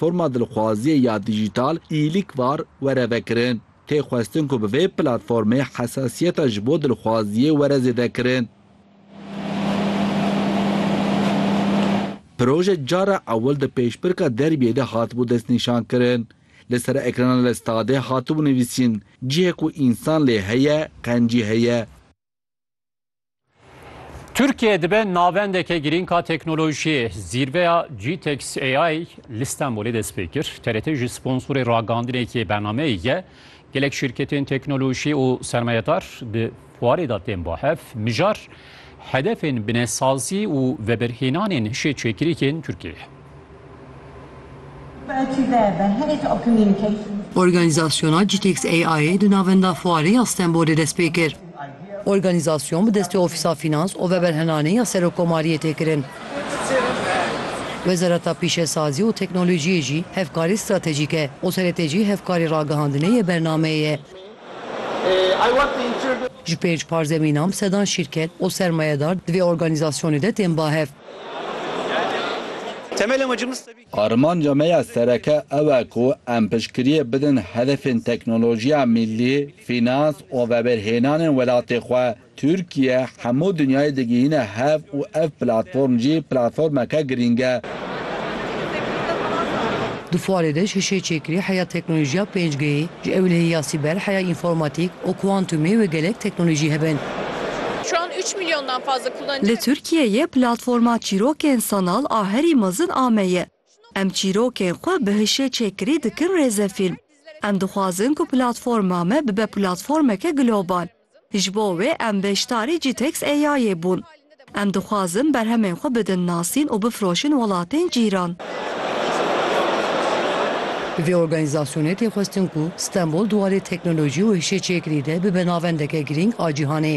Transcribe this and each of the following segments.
Forma dilxwaziyê ya dîjîtal îlîk var were vekirin. Tê xwestin ku bi vê platformê hesasiyeta ji bo dilxwaziyê were zêdekirin. Proje cara ewil di pêşbirka derbiyê de hatibû destnîşankirin. Li ser ekrana li stadê hatibû nivîsîn, Cihê ku însan lê heye, qencî heye. Türkiye dibe navendeke girînka teknolojiyê. Zîrveya GTEX AI li Stenbolê dest pê kir. TRT ji sponsorê ragandinekê bernameyê ye. Gelek şîrketên teknolojî û sermayedar di fuarê de tên bahev. Mijar hedefên binesazî û vebirhênanên hişê çêkirîkên Tirkiyeyê. Organîzasyona Gitex AI'ê di Navenda Fuarê ya Stenbolê dest pê kir. Organîzasyon bi destê Ofîsa Fînans û Veberhenanê ya Serokomariyê tê kirin. Wezareta Pîşesazî û Teknolojiyê jî hevkarî stratejîk e û serêtê jî hevkarî ragihandinê yê bernameyê ye. Ji pênc parzemînan bi sedan şîrket û sermayedar di vê organîzasyonê de tên bahev. Armanca me ya sereke ew e ku em piştgiriyê bidin hedefên teknolojiya mîllî, fînans û veberhênanên welatê xwe. Tirkiye hemû dinyayê digihîne hev û ev platform jî platformeke girîng e. Di fuarê de ji şêçêkirî heya teknolojiya pêncgeyê, ji ewilehîya sîber heya înformatîk û kuantumê wê gelek teknolojî hebin. Li Tirkiyeyê platforma çîrokên sanal a herî mezin ame ye. Em çîrokên xwe bi hişê çêkirî dikin rêzefîlm. Em dixwazin ku platforma me bibe platformeke global. Ji bo wê em beşdarî Citex AI'ê bûn. Em dixwazin berhemên xwe bidin nasîn û bifroşin welatên cîran. Bi vê organîzasyonê tê xwestin ku Stenbol di warê teknolojî û hişeçêkirî de bibe navendeke girîng a cîhanê.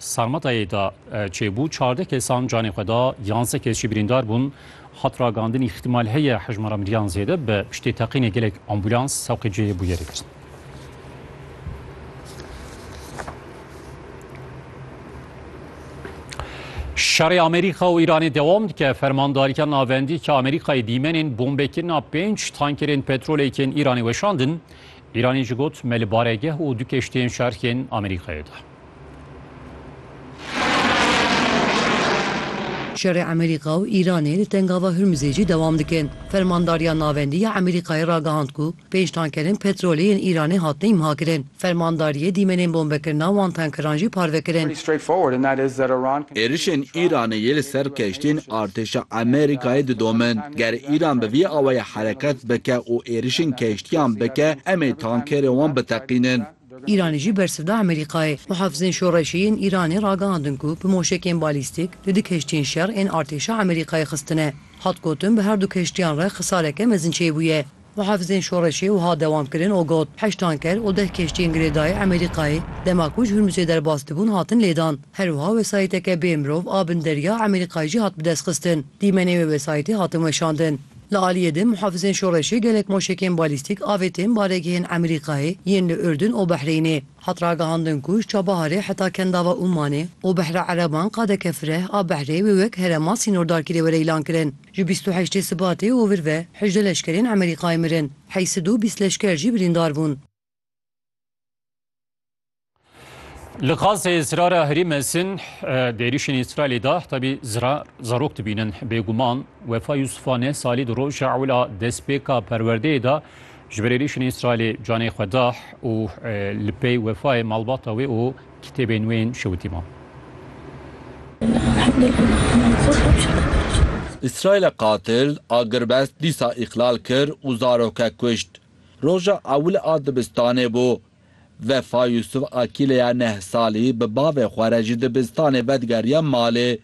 Sarmatayê de çêbû çardeh kesan canê xwe da, yanzdeh kes jî birîndar bûn. Hat ragandin îhtimal heye hejmara miriyan zêde bibe piştî teqînê gelek ambûlans sewqê cihê bûyerê kirin. Şerê Amerîka û Îranê dewam dike. Fermandarîya Navendî ki Amerîkayê dîmenên bombekirina pênc tankerên petrolê yên Îranê weşandin. Îranê jî got me li baregeh û du keştiyên şerxên Amerîkayê de. Şerê Amerîka û Îranê li Tengava Hurmizê jî dewam dikin. Fermandariya Navendî ya Amerîkayê ragihand ku pênc tankerên petrolê yên Îranê hatine îmhakirin. Fermandariyê dîmenên bombekirina wan tankeran jî parve kirin. Êrişên Îranê yê li ser keştiyên artêşa Amerîkayê didomin. Ger Îran bi vî awayî hereket bike û êrişên keştiyan bike, em ê tankerên wan biteqînin. Îranê jî bersivda Amerîkayê. Muhafizên Şoreşî yên Îranê ragihandin ku bi moşekên balîstîk li di keştiyên şer ên artêşa Amerîkayê xistine. Hat gotin bi herdu keştiyan re xisareke mezin çêbûye. Muhafizên Şoreşê wiha dewam kirin û got, Heşt tanker û deh keştiyên girêdayî Amerîkayê dema ku ji Hurmuzê derbas dibûn hatin lêdan. Herwiha wesayîteke bê mirov a bin derya Amerîkayê jî hat bidestxistin. Dîmenê wê wesayîtê hatin weşandin. Li aliyê din muhafizên şoreşê gelek moşekên balîstîk avêtin baregehên Emerîkayê yên li Urdun û Behrêynê. Hat ragihandin ku ji çabaharê heta kendava Ummanê û behra ereban qadeke fireh a behrê wê wek herema sînordarkî dê were îlan kirin. Ji bîst û heştê Sibatê û vir ve hejdeh leşkerên Emerîkayê mirin, heysid û bîst leşker jî birîndar bûn. Li Gazê zirara herî mezin di êrîşên Îsraîlê de tabî zirar zarok dibînin. Bêguman Wefa Yusufan e salî di roja ewla destpêka perwerdeyê de ji ber êrîşên Îsraîlê canê xwe da û li pey wefayê malbata wê û kitêbên wê yên şewitî ma. Îsraîla qatil agirbest dîsa îqlal kir û zarokek kuşt. Roja ewil a dibistanê bû. Vefa Yusuf a kîleya neh salî bi bavê xwe re ji dibistanê vedigeriya malê.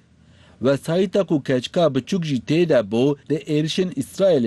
Wesayîta ku keçika biçûk jî tê de bû di êrişên Îsraîlê